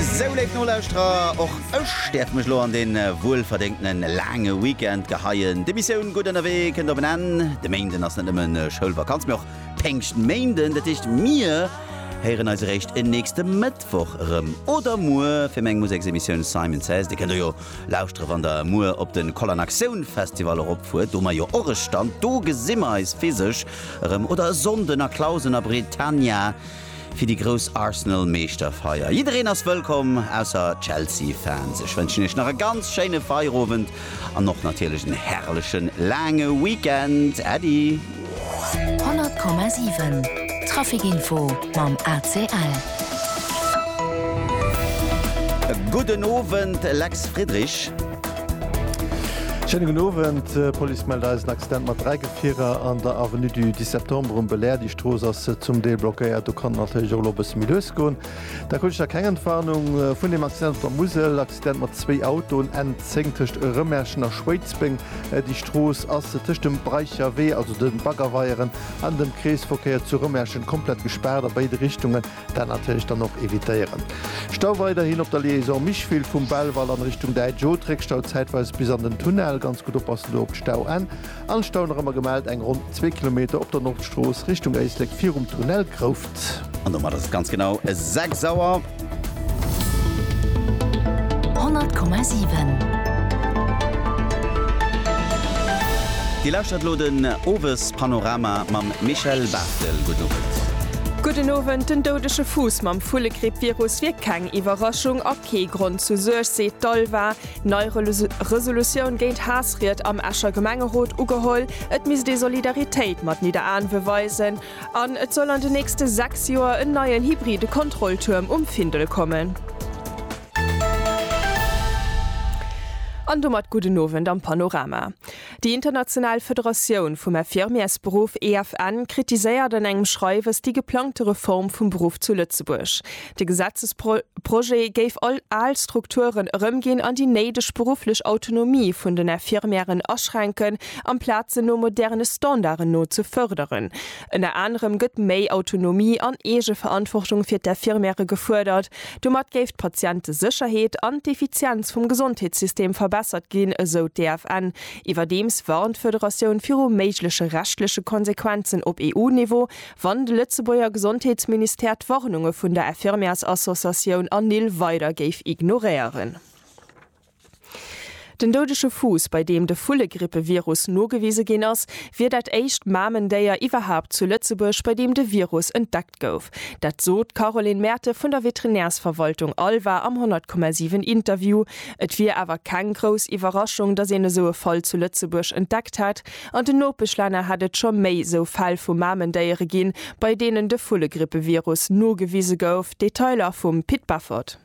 Sou léif Nolauschterer, och ech däerf mech elo an dee wuelverdéngtene laange Weekend geheien. D'Emissioun Gutt Ënnerwee kënnt op en Enn. De Méinden ass net nëmme Schoulvakanz, mee och Péngschtméinden. Dat heescht, mir héieren eis eréischt en nächste Mëttwoch erëm oder muer fir meng Museksemissioun Simon Says. Dir kënnt der jo lauschtere wann der muer op de Kollern Aktioun Festival eropfuert, do hu mer jo och e Stand. Do gesi mer eis physesch erëm oder e Sonnden a Clausen a Britannia. fir déi grouss Arsenal-Meeschterfeier. Jiddereen ass wëllkomm, ausser Chelsea-Fans. Ech wënschen iech nach e ganz schéine Feierowend an och natierlech en herrlechen, laange Weekend. Äddi! 100,7 Trafic Info mam ACL. Gudden Owend, Lex Friedrich. Schéine gudden Owend. D'Police mellt eis en Accident mat dräi Gefierer an der Avenue du 10 Septembre um Belair. Déi Strooss ass zum Deel blockéiert. Do kann et natierlech och elo e bësse méi lues goen. Da krut ech da keng Entwarnung vun deem Accident op der Musel. Accident mat zwéi Autoen N10 tëscht Rëmerschen a Schwéidsbeng. Déi Strooss ass tëscht dem Breicherwee, also de Baggerweieren, an dem Kreesverkéier zu Rëmerschen komplett gespaart a béide Richtungen. Dat natierlech dann och evitéieren. Stau weiderhin op der Liaison Micheville vum Belval an Richtung Däitsch Oth, Réckstau zäitweis bis an den Tunnel. Ganz gutt oppassen do op d'Stauenn. An Stau nach ëmmer gemellt eng ronn zwee Kilometer op der Nordstrooss Richtung Éislek virum Tunnel Grouft. An domat ass et ganz genau 6 Auer. 100,7. Dir lauschtert elo den Owespanorama mam Michel Barré. Marcel, gudden Owend. Gudden Owend. Den doudege Fuuss mam Vullegrippvirus wier keng Iwwerraschung a kee Grond zu Suerg, seet d'ALVA. Nei Resolutioun géint Haassried am Escher Gemengerot ugeholl. Et misst ee Solidaritéit mat Nidderaanwe weisen. An et soll an den nächste 6 Joer en neien hybride Kontrolltuerm um Findel kommen. An domat gudden Owend am Panorama. Déi international Federatioun vum Infirmiersberuff, EFN, kritiséiert an engem Schreiwes déi geplangte Reform vum Beruff zu Lëtzebuerg. De Gesetzesprojet géif all al Strukturen erëmginn an déi néideg berufflech Autonomie vun den Infirmièren aschränken, amplaz se no moderne Standarden no ze fërderen. Ënner anerem gëtt méi Autonomie an Eegeverantwortung fir d'Infirmiere gefuerdert, Domat géif d'Patientesécherheet an d'Effizienz vum Gesondheetssystem verbessert ginn, esou d'EFN. Iwwerdeems warnt d'Federatioun viru méigleche rechtleche Konsequenzen op EU-Niveau, wann de Lëtzebuerger Gesondheetsministère d'Warnunge vun der Infirmièrsassociatioun Anil weider géif ignoréieren. Den doudege Fuuss, bei deem de Vullegrippevirus nogewise ginn ass, wier dat éischt Mamendéier iwwerhaupt zu Lëtzebuerg, bei deem de Virus entdeckt gouf. Dat sot d'Caroline Merte vun der Veterinärsverwaltung Alva am 100,7 Interview. Et wier awer keng grouss Iwwerraschung, datt een esou e Fall zu Lëtzebuerg entdeckt hätt. An den Nopeschlänner hätt et scho méi esou Fäll vu Mamendéiere ginn, bei deenen de Vullegrippevirus nogewise gouf. Detailer vum Pit Beffort.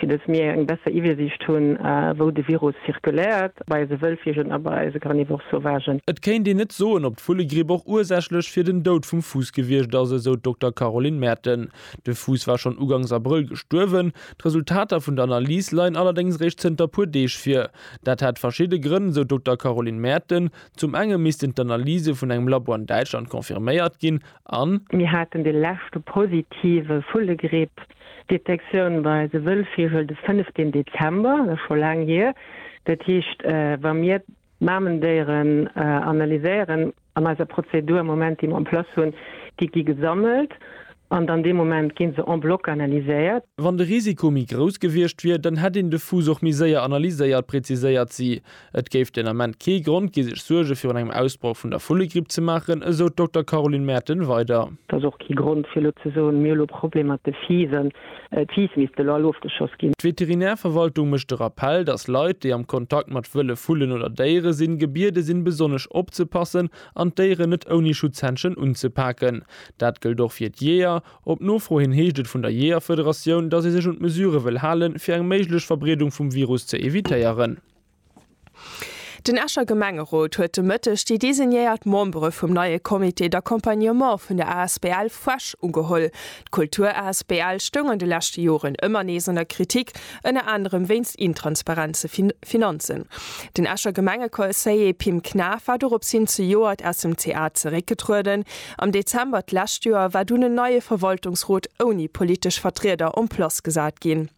fir datt mir eng besser Iwwersiicht hunn, wou de Virus zirkuléiert, bei eise Wëllvigelen a bei eise Carnivores sauvagen. Et kéint een net soen, ob d'Vullegripp och ursächlech fir den Doud vum Fuuss gewiescht ass, esou d'Dokter Caroline Merten. De Fuuss war schonn ugangs Abrëll gestuerwen. D'Resultater vun der Analys leien allerdéngs réischt zënter puer Deeg vir. Dat hätt verschidde Grënn, esou d'Dokter Caroline Merten. Zum enge missten d'Analyse vun engem Labo an Däitschland confirméiert ginn. an. Mir haten de leschte positive Vullegripp Detektioun bei de Wëllvigel de 15 Dezember, dat ass scho laang hier. Dat heescht, wa mir d'Mamendéieren analyséieren an eiser Prozedur am Moment déi mer en place hunn, déi gi gesammelt an dann dee Moment gi se en bloc analyséiert. Wann de Risiko méi grouss gewiescht wier, dann hätt een de Fuuss och méi séier analyséiert, präziséiert si. Et géif den Ament kee Grond gi sech Suerge virun engem Ausbroch vun der Vullegripp ze maachen, esou d'Dokter Caroline Merten weider. Et ass och kee Grond fir elo ze soen, mir hu lo Problem mat de Fiisen, d'Fiiss misst elo all ofgeschoss ginn. D'Veterinärverwaltung mécht de Rappell, datt Leit, déi am Kontakt mat wëlle Vullen oder Déiere sinn, gebiede sinn besonnesch opzepassen an d'Déieren net ouni Schutzhändschen unzepaken. Dat gëllt och fir d'Jeeër. Op Nofro hin heescht et vun der Jeeërfederatioun, datt ee sech un d'Mesurë wëll halen, fir eng méiglech Verbreedung vum Virus ze evitéieren. Den Escher Gemengerot huet de Mëtteg déi designéiert Membere vum neie Comité d'accompagnement vun der asbl Fuesch ugeholl. D'Kultur asbl stoung an de leschte Joren ëmmer nees an der Kritik, ënner anerem wéinst intransparente Finanzen. Den Escher Gemengeconseiller Pim Knaff war dorops hin zejoert aus dem CA zeréckgetrueden. Am Dezember d'lescht Joer war dunn en neie Verwaltungsrot ouni politesch Vertrieder en place gesat ginn.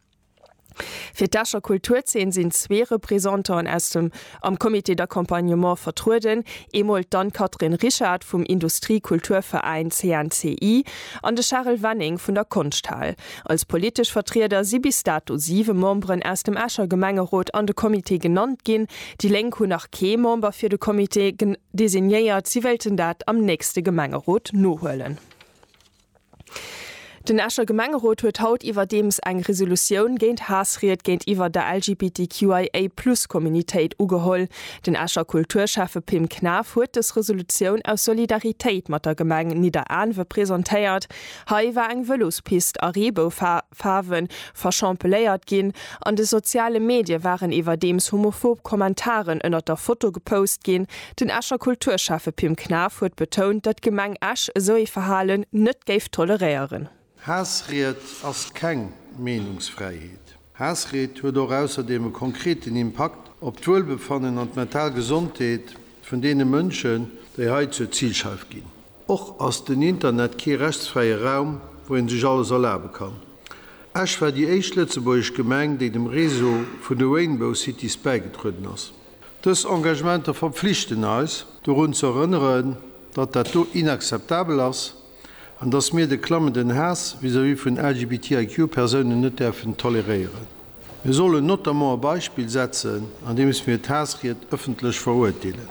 Fir d'Escher Kulturzeen sinn zwee Representanten aus dem am Comité d'accompagnement vertrueden, eemol d'Anne-Catherine Richard vum Industrie-Kulturveräin CNCI an de Charel Wenning vun der Konschthal. Als politesch Vertrieder si bis dato siwe Memberen aus dem Escher Gemengerot an de Comité genannt ginn. Déi Lénk hunn nach kee Member fir de Comité designéiert, si wéilten dat am nächste Gemengerot nohuelen. Den Escher Gemengerot huet haut iwwerdeems eng Resolutioun géint Haassried géintiwwer der LGBTQIA+ Communitéit ugeholl. Den Escher Kulturschäffe Pim Knaff huet dës Resolutioun aus Solidaritéit mat der Gemeng Nidderaanwe presentéiert. Hei war eng Vëlospist a Reeboufaarwe verschampeléiert ginn. An de soziale Medie waren iwwerdeems homophob Kommentaren ënnert der Foto gepost ginn. Den Escher Kulturschäffe Pim Knaff huet betount, datt d'Gemeng Esch esou ee Verhalen net géif toleréieren. Haassried ass keng Meenungsfräiheet. Haassried huet och ausserdeem e konkreten Impakt op d'Wuelbefannen an d'mental Gesondheet vun deene Mënschen, déi hei zur Zilscheif ginn. Och ass den Internet kee rechtsfräie Raum, wou ee sech alles erlabe kann. Esch war déi éischt lëtzebuergesch Gemeng, déi dem Réseau vun de Rainbow Cities bäigetrueden ass. Dës Engagementer verpflichten eis, dorun ze erënneren, datt dat do inakzeptabel ass an datt mir de klammenden Haass vis-à-vis vun LGBTIQ-Persounen net däerfen toleréieren. Mir sollen notamment e Beispill setzen, andeems mir d'Haassried ëffentlech verurteelen.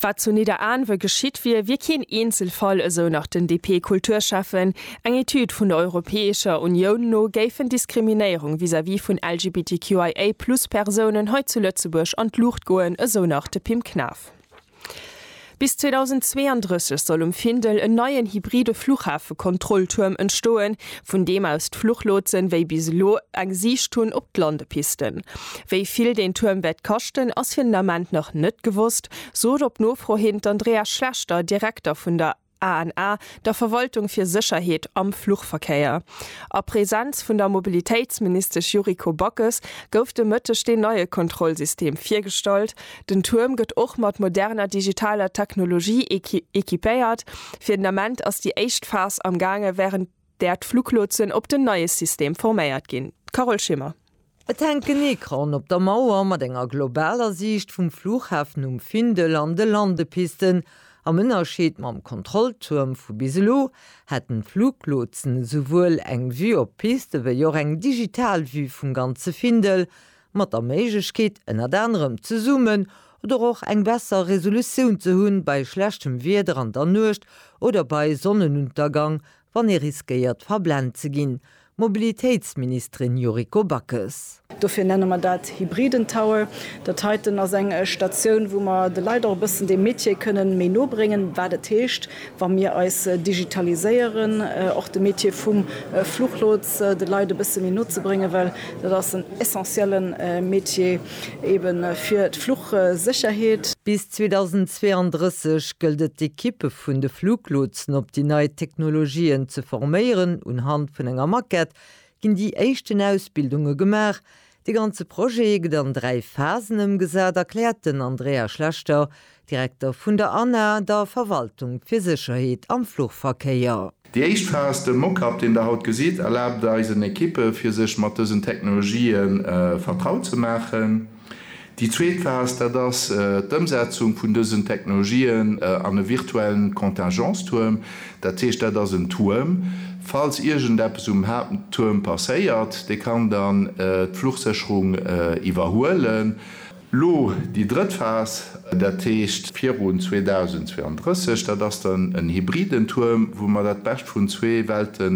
Wat zu Nidderaanwe geschitt wier, wier keen Eenzelfall, esou nach den DP-Kulturschäffen. Eng Etüd vun der Europäescher Unioun no géifen Diskriminéierung vis-à-vis vun LGBTQIA-Plus-Persounen hei zu Lëtzebuerg an d'Luucht goen, esou nach de Pim Knaff. Bis 2032 soll um Findel en neien hybride Fluchhafe-Kontrolltuerm entstoen, vun deem aus d'Fluchlotsen wéi bis elo eng Siicht hunn op d'Landepisten. Wéi vill deen Tuerm wäert kaschten, ass fir den Ament nach net gewosst, sot op Nofro hin d'Andrea Schlechter, Direkter vun der ANA, der Verwaltung fir Sécherheet am Fluchverkéier. A Presenz vun der Mobilitéitsministesch Yuriko Backes gouf de Mëtteg deen neie Kontrollsystem virgestallt, Den Tuerm gëtt och mat moderner digitaler Technologie equipéiert. Fir den Ament ass déi éischt Phas am gaange wärend där d'Fluglotsen op den neie System forméiert ginn. Carole Schimmer. Et hänkt en Ecran op der Mauer mat enger globaler Siicht vum Flughafen um Findel an de Landepisten. Am Ënnerscheed mam Kontrolltuerm vu bis elo hätten d'Fluglotsen esouwuel eng Vue op d'Piste wéi och eng digital Vue vum ganze Findel. mat der Méiglechkeet ënnert anerem zesummen oder och eng besser Resolutioun ze hunn bei schlechtem Wieder an der Nuecht oder bei Sonnenuntergang, wann ee riskéiert verblent ze ginn, Mobilitéitsministerin Yuriko Backes. Dofir nenne mer dat hybriden Tower. Dat heiten ass eng Statioun, wou mer de Leit och e bëssen dee Metier kënnen méi no bréngen, wat et heescht, wa mir eis digitaliséieren, och de Métier vum Fluchlots de Leit e bësse méi no ze bréngen, well dat ass en essentielle Métier ebe fir d'Fluchsécherheet. Bis 2032 gëllt et d'Ekippe vun de Fluglotsen op déi nei Technologien ze forméieren. Unhand vun enger Maquette ginn déi éischten Ausbildunge gemaach, De ganze Projet gëtt an dräi Phasen ëmgesat, erkläert den Andrea Schlechter, Direkter vun der ANA, der Verwaltung fir Sécherheet am Fluchverkéier. Déi éischt Phas, de Mock-up, deen der haut gesitt, erlaabt eisen Ekippe fir sech mat dësen Technologië vertraut ze maachen. Déi zweet Phas, dat ass d'Ëmsetzung vun dësen Technologien an e virtuellen Contingence-Tuerm. Dat heescht, dat ass en Tuerm, falls iergendeppes um Haapttuerm passéiert, dee kann dann d'Fluchsécherung iwwerhuelen. Elo déi drëtt Phas, dat heescht virun 2032, dat ass dann en hybriden Tuerm, wou mer dat Bescht vun zwee Welte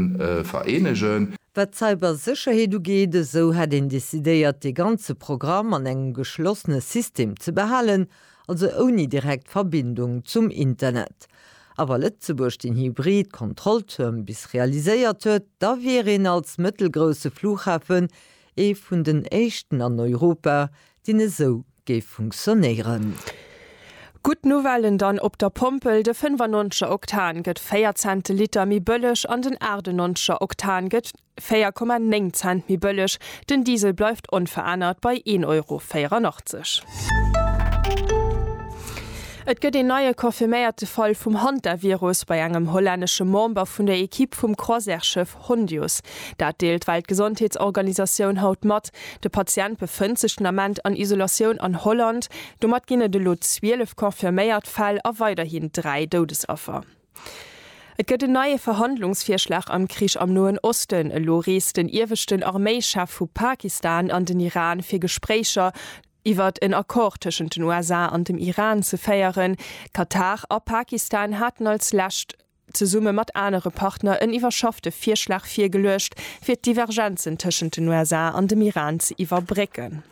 vereenegen. Wat d'Cybersécherheet ugeet, esou hätt een decidéiert, dee ganze Programm an engem geschlossene System ze behalen, also ouni direkt Verbindung zum Internet. A wa Lëtzebuerg den hybrid Kontrolltuerm bis realiséiert huet, da wier een als mëttelgrousse Flughafen ee vun den éischten an Europa, deen esou géif funktionéieren. Gutt Nouvellen dann op der Pompel, de 95 er Oktan gëtt 4 Cent de Liter méi bëlleg an den 98 er Oktan gëtt 4,9 Cent méi bëlleg. Den Diesel bleift onverännert bei 1 Euro 84. Et gëtt een neie confirméierte Fall vum Hantavirus bei engem hollännesche Member vun der Ekipp vum Croisièreschëff. Hondius. Dat deelt d'Weltgesondheetsorganisatioun haut mat. De Patient befënnt sech den Ament an Isolatioun an Holland. Domat ginn et elo 12 confirméiert Fäll a weiderhin 3 Doudesaffer. Et gëtt en neie Verhandlungsvirschlag am Krich am Noen Osten. Elo reest den ieweschten Arméichef vu Pakistan an den Iran fir Gespréicher iwwert en Accord tëschent den USA an dem Iran ze féieren. Katar a Pakistan haten als lescht zesumme mat anere Partner en iwwerschaffte Virschlag virgeluecht, fir d'Divergenzen tëschent den USA an dem Iran ze iwwerbrécken.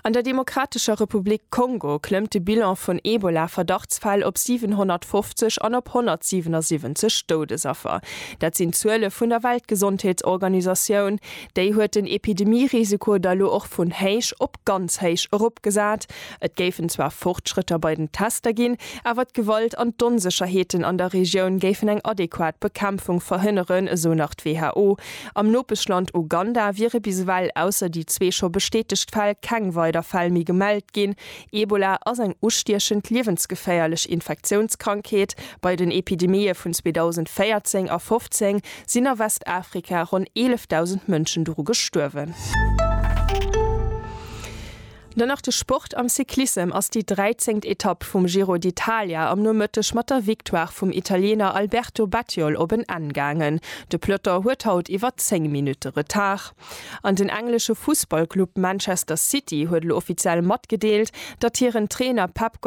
An der Demokratescher Republik Kongo klëmmt de Bilan vun Ebola-Verdachtsfäll op 750 an op 177 Doudesaffer. Dat sinn d'Zuele vun der Weltgesondheetsorganisatioun. Déi huet den Epidemie-Risiko da lo och vun héich op ganz héich eropgesat. Et géifen zwar Fortschrëtter bei den Tester ginn, awer d'Gewalt an d'Onsécherheeten an der Regioun géifen eng adequat Bekämpfung verhënneren, esou nach d'WHO. Am Nopeschland Uganda wiere bis ewell, ausser déi zwee scho bestätegt Fäll, keng weider Fäll méi gemellt ginn. Ebola ass eng ustiechend, liewensgeféierlech Infektiounskrankheet. Bei den Epidemië vun 2014 a 2015 sinn a Westafrika ronn 11.000 Mënschen doru gestuerwen. Dann nach de Sport, Am Cyclissem ass déi 13. Etapp vum Giro d'Italia am Nomëtteg mat der Victoire vum Italiener Alberto Bettiol op en Enn gaangen. De Peloton huet haut iwwer 10 Minutte Retard. An den englesche Fussballclub Manchester City huet elo offiziell matgedeelt, datt hiren Trainer Pep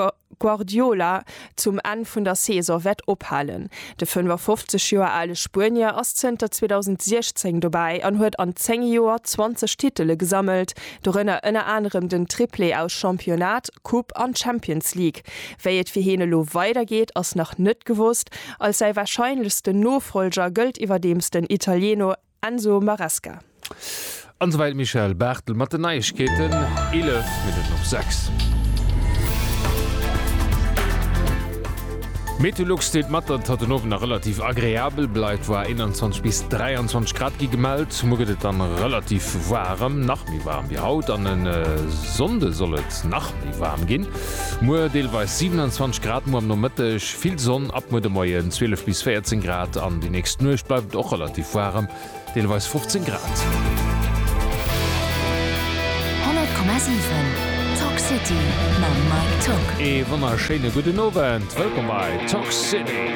Guardiola zum Enn vun der Saison wäert ophalen. De 55 Joer ale Spuenier ass zënter 2016 dobäi an huet an 10 Joer 20 Titele gesammelt, dorënner ënner anerem den Triplé aus Championnat, Coupe an Champions League. Wéi et fir hien elo weidergeet, ass nach net gewosst. Als säi warscheinlechsten Nofollger gëllt iwwerdeems den Italieno. Enzo Maresca. An esou wäit Michèle Barthel mat den Neiegkeeten, 11 Minutten op 6. Meteolux deelt mat, datt et haut den Owend nach relativ agreabel bleift, woar 21 bis 23 Grad gi gemellt. Muer gëtt et dann relativ waarem, nach méi waarem wéi haut, an e Sonnde soll et nach méi waarem ginn, muer deelweis 27 Grad, muer am Nomëtteg. Vill Sonn ab muer de Moien, 12 bis 14 Grad, an déi nächst Nuecht bleift et och relativ waarem, deelweis 15 Grad. 100,7 Talk City mam Mike Tock. Ee wonnerschéine gudden Owend, wëllkomm bei Talk City.